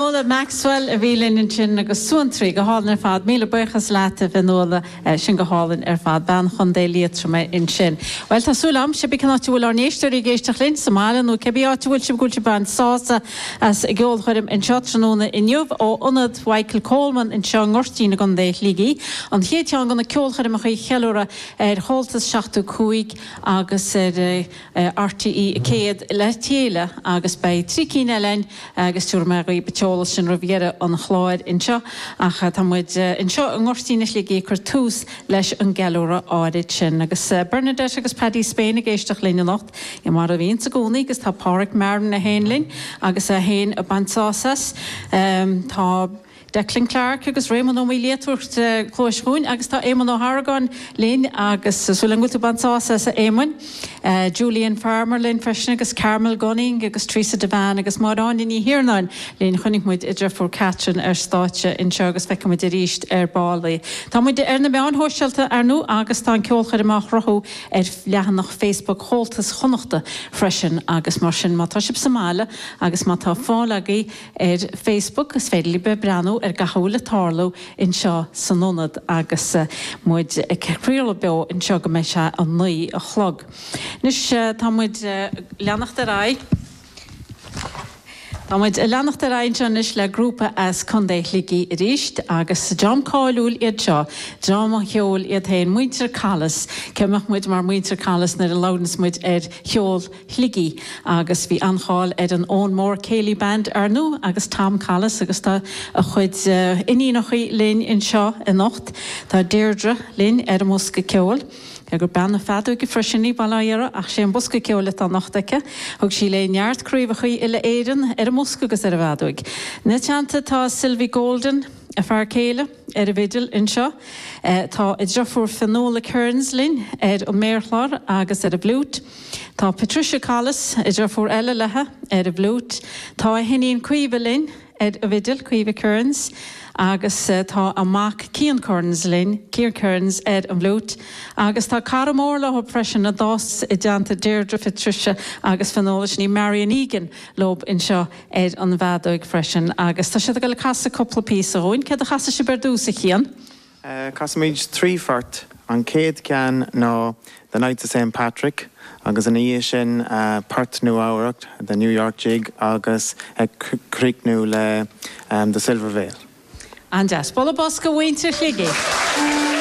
Nuala Maxwell a bhí linn ansin agus suantraí go hálainn ar fad. Míle buíochas leat a Fhionnuala, sin go hálainn ar fad. Bean Chontae Liatroma í ansin. Bhuel, tá súil a'm, sé bith cén áit a bhfuil ár n-éisteoirí ag éisteacht linn, sa mbaile nó cibé áit a bhfuil sibh, go bhfuil sibh ag baint sásamh as an gceolchoirm anseo tráthnóna inniu ó Ionad Mhichael Coleman anseo i nGoirtín i gContae Shligigh, an chéad cheann de na ceolchoirmeacha ag ceiliúradh ar Chomhaltas 75 agus ar. RTE100 le chéile agus beidh trí cinn eile ann agus tabharfaidh mé dhaoibh an t-eolas sin roimh dheireadh an chláir anseo ach tá muid anseo i nGoirtín Shligigh ag cur tús leis an gceiliúradh áirid sin agus Bernadette agus Paddy Spane ag éisteacht linn anocht mar a bhíonns i gcónaí agus tá Páraic Marron é féin linn agus é féin ag baint sásamh as. Tá. Declan Clarke agus Réamonn Ó Maoilia ag tabhairt cluais dhúinn agus tá Éamonn Ó hArgáin linn agus súil agam go bhfuil tú ag baint sásaimh as a Éamoinn. Julian Farmer linn freisin agus Carmel Gunning agus Teresa Devane agus Máire Áine Ní hIarnáin linn. Chonaic muid a deirfiúr Catherine ar stáitse anseo agus feicfidh muid arís ar ball í. Tá muid ar na meáin shóisialta ar nó agus tá an ceolchoirm á shruthú ar leathanach Facebook Chomhaltas Chonnacht freisin agus mar sin má tá sibh sa mbaile agus má tá fáil agaibh Ar Facebook, is féidir libh breathnú ar gach a bhfuil ag tarlú anseo san Ionad agus muid ag craoladh beo anseo go mbeidh sé a naoi a chlog. Anois, tá muid ag leanacht ar aghaidh, tá muid ag leanacht ar aghaidh anseo anois le grúpa as Contae Shligigh arís agus is dream cáiliúil iad seo, dream an cheoil iad féin, Muintir Collis. Cé mbeadh muid murach Muintir Collis nuair a labhraíonns muid ar cheol? Shligigh, agus bhí an-cháil ar an Owenmore Céilí Band arnú agus Tom Collis agus tá a chuid iníonachaí linn anseo anocht. Tá Deirdre linn ar an mbosca ceoil. Cé gur bean feadóige freisin í Deirdre ach sé an bosca ceoil atá anocht aici. Thug sí léi neart craobhachaí uile Éireann ar an mbosca agus ar an bhfeadóig. Ina teannta tá Sylvie Golden, a fear céile, ar an bhfidil anseo. Tá a deirfiúr Fionnuala Kearns linn ar an méarchlár agus ar an bhfliúit. Tá Patricia Collis, a deirfiúr eile leithe, ar an bhfliúit, tá a hiníon Caoimhe linn ar an bhfidil, Caoimhe Kearns, agus tá a mac Cian Kearns linn, Cian Kearns, ar an bhfliúit. Agus tá cara mór leo freisin a d'fhás i dteannta Deirdre, Phatricia agus Fionnuala, sin í, Marian Egan, leo anseo ar an bhfeadóig freisin. Agus tá siad ag goil ag casadh cúpla píosa dhúinn. Céard a chasfaidh sibh ar dtús, a Chian? Casfaimid trí phort, an chéad cheann ná The Knights of Saint Patrick agus ina dhiaidh sin port Nua-Eabhrac, The New York Jig agus ag críochnú le The Silver Veil. An-deas. Bualadh bos go mhuintir Shligigh!